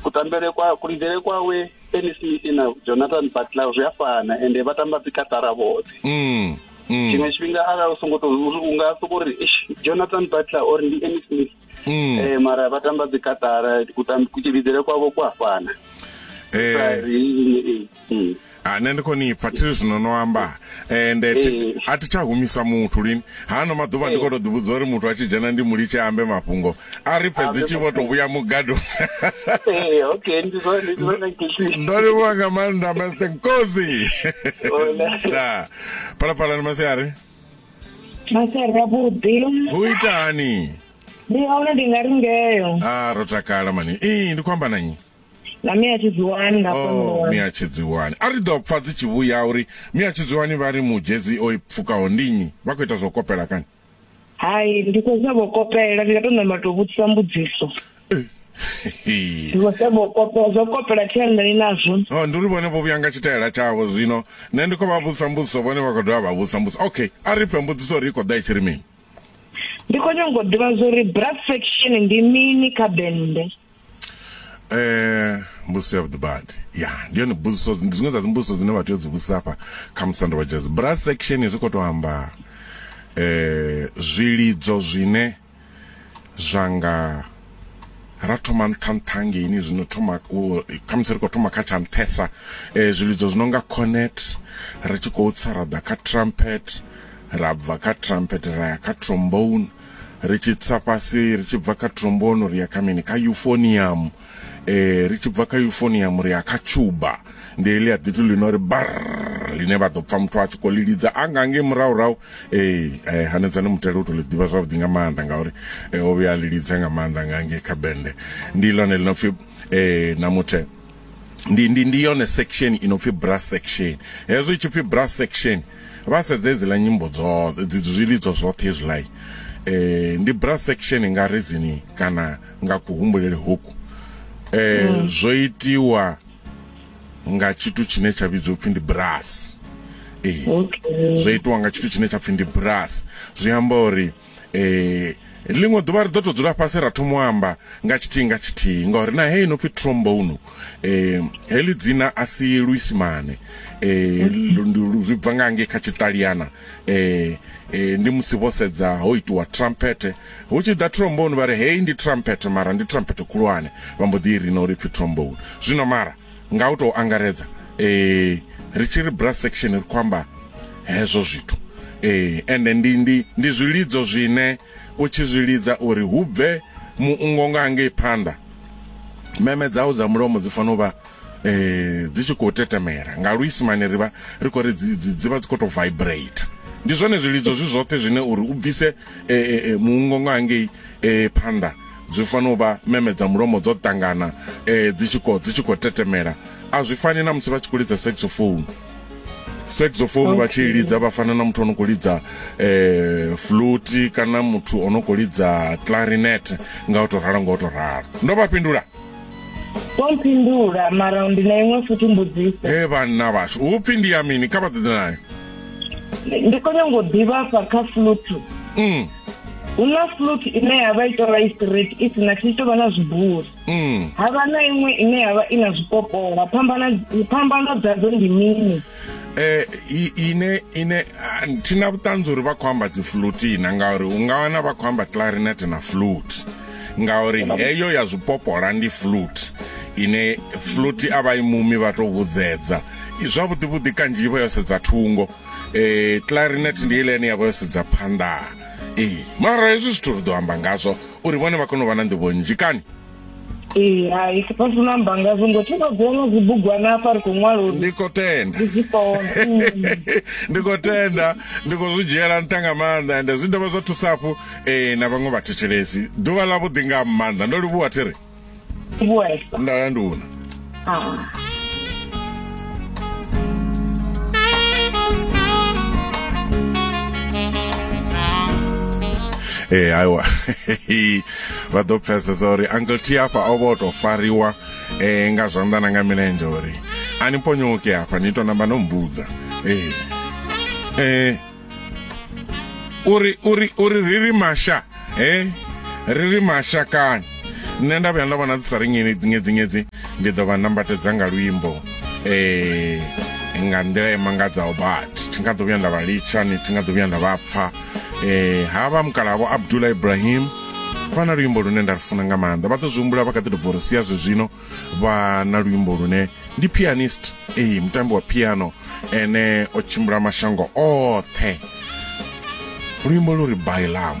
kutambele kwa kulidele kwawe Benny Smith na Jonathan Butler zwi a fana ende vha tamba dzi katara vhoṱhe mm. mm. tshiṅwe tshifhinga arali u songo to u nga soko uri Jonathan Butler or ndi Benny Smith mm. eh mara vha tamba dzi katara kutambele kwavo kwa fana eh mm. ha ah, nṋe ndi khoni pfa thi zwino no amba ende eh, a thi tsha humisa muthu lini hano maḓuvha ndi eh. khou tou ḓivhudza uri muthu a tshi dzhena ndi mulitshe ambe mafhungo a ri pfe dzi tshi vho tou vhuya mugado eh, ndo livhuwa nga maanḓa master nkosi da phalaphala ni masiari masiari avhuḓi hu itani ndi hone ndi nga ri ngeyo a ah, ro takala mani ii ndi khou amba na nyi na mia tshidziwani na oh, mia tshidziwani a ri ḓo pfa dzi tshi vhuya uri mia tshidziwani vha ri mudzhedzi o i pfukaho ndi nnyi vha khou ita zwa u kopela kani hai ndi khou sa vho kopela ndi nga tou namba tou vhudzisa mbudziso eh. zwo kopela thianḓani nazwo oh, ndi uri vhone vho vhuya nga tshitaela tshavho zwino nṋe ndi khou vha vhudzisa mbudziso vhone vha khou dovha vha vhudzisa mbudziso okay a ri pfe mbudziso uri i khou ḓa i tshi ri mini ndi khou nyanga u ḓivha zwa uri brass section ndi mini kha bende eh mbudziso ya vhuḓibadi ya ndi yone mbudziso ndi zwiṅwe dza dzimbudziso dzine vha tea u dzi vhudzisa hafha kha musanda wa jazz brass section zwi khou tou amba eh zwilidzo zwine zwa nga ra thoma nṱha nṱha ngeini zwino thoma khamusi ri khou thoma kha tsha nṱhesa um zwilidzo zwi no nga cornet ri tshi khou tsa ra ḓa kha trumpet ra bva kha trumpet ra ya kha trombone ri tshi tsa fhasi ri tshi bva kha trombono ri ya kha mini kha euphonium eh ri tshi bva kha euphonium ri ya kha tuba ndi heḽi a ḓithu ḽino ri bar ḽine vha ḓo pfa muthu a tshi khou ḽi lidza a nga ngei murahurahu ee eh, hanedzani mutele u to ḽi ḓivha zwavhuḓi nga maanḓa ngauri eh, o vhuya a ḽi lidza nga maanḓa nga ngei kha bende ndi ḽone ḽi no pfi eh, na muthe ndi ndi ndi yone section i no pfi brass section hezwi tshi pfi brass section vha sedze dzi la nyimbo dzo dzi zwilidzo zwoṱhe izwilai eh ndi brass section nga rezini kana nga kuhumbulele hoku eh mm. zwo itiwa nga tshithu tshine tsha vhidzwa upfi ndi brass eh zwo itiwa nga tshithu tshine tsha pfi ndi brass zwi amba uri eh ḽiṅwe ḓuvha ri ḓo to dzula fhasi ra thoma u amba nga tshithihi nga tshithihi ngauri na heyi no pfi trombone eh heḽi dzina a si luisimane eh zwi bva nga ngei kha tshiṱaliana eh eh ndi musi vho sedza ho itiwa trumpet hu tshi ḓa trombone vha ri heyi ndi trumpet mara ndi trumpet khulwane vha mbo ḓi i rina uri pfi trombone zwino mara nga u tou angaredza eh ri tshi ri brass section ri khou amba hezwo zwithu eh ende ndi ndi ndi zwilidzo zwine u tshi zwi lidza uri hu bve muungo nga hangei phanḓa meme dzau dza mulomo dzi fanela u vha eh dzi tshi khou tetemela nga luisimane ri vha ri khou ri dzi vha dzi khou tou vibrate ndi zwone zwilidzo zwi zwoṱhe zwine uri u bvise eh, eh, eh, muungo nga hangei phanḓa zwi fanela u vha meme dza mulomo dzo ṱangana um dzi tshi dzi tshi khou tetemela a zwi fani na musi vha tshi khou lidza saxophone saxophone vha tshi lidza vha fana na muthu o no khou lidza um fluti kana muthu o no khou lidza clarinet nga u tou ralo nga u tou ralo ndo vha fhindula mpindula mara ndi na iṅwe futhi mbudziso e vhanna vhashu u pfhi ndi ya mini kha vha ḓeḓe nayo ndi khou nyanga u ḓivha fha kha flutu mm. hula flute ine ya vha i tou vha i straight i si na tshi tou vha na zwibuli mm. ha vha na iṅwe ine ya vha i na zwipopola phambano dzadzo ndi mini eh ine ine ah, thina vhuṱanzi uri vha khou amba dzi flute ina ngauri u nga wana vha khou amba clarinet na flute ngauri heyo ya zwipopola ndi flute ine flute a vha i mumi vha tou vhudzedza zwavhuḓivhuḓi kanzhi i vha yo sedza thungo eh clarinet ndi ile ine yavha yo sedza phanḓa eh mara hezwi zwithu ri ḓo amba ngazwo uri vhone vha kone u vha na nḓivho nnzhi kani ee hai si fhasi na amba ngazwo ngo thi vha dzona dzibugwana hafha ri khou ṅwala uri ndi khou tenda ndi khou tenda ndi khou zwi dzhiela nṱha nga maanḓa ende zwi dovha zwa thusa hafhu um na vhaṅwe vhathetshelesi ḓuvha ḽa vhuḓi nga maanḓa ndo livhuwa thiri Vuwesa. nda ya nduna Ah. ee aiwa vha ḓo pfesesa uri uncle t hafha o vho to fariwa um nga zwanḓa na nga milenzhe uri a ni ponyoke hafha ni to namba no mbudza ee ee uri uri uri ri ri masha eh ri ri mashakani nṋe nda vhuya nda vhona dzi sa ri nyedzinyedzi ndi ḓo vha nambatedza nga luimbo eh nga nḓila i mangadzaho but thi nga ḓo vhuya nda vha litsha ni thi nga ḓo vhuya nda vha pfa eh ha vha mukalavo abdullah ibrahim vha na luimbo lune nda lufuna nga maanḓa vha ḓo zwi humbula vha kha ḓi to bva uri sia zwezwino vha na luimbo lune ndi pianist ee mutambi wa piano ene o tshimbila mashango oṱhe luimbo lu ri bailamu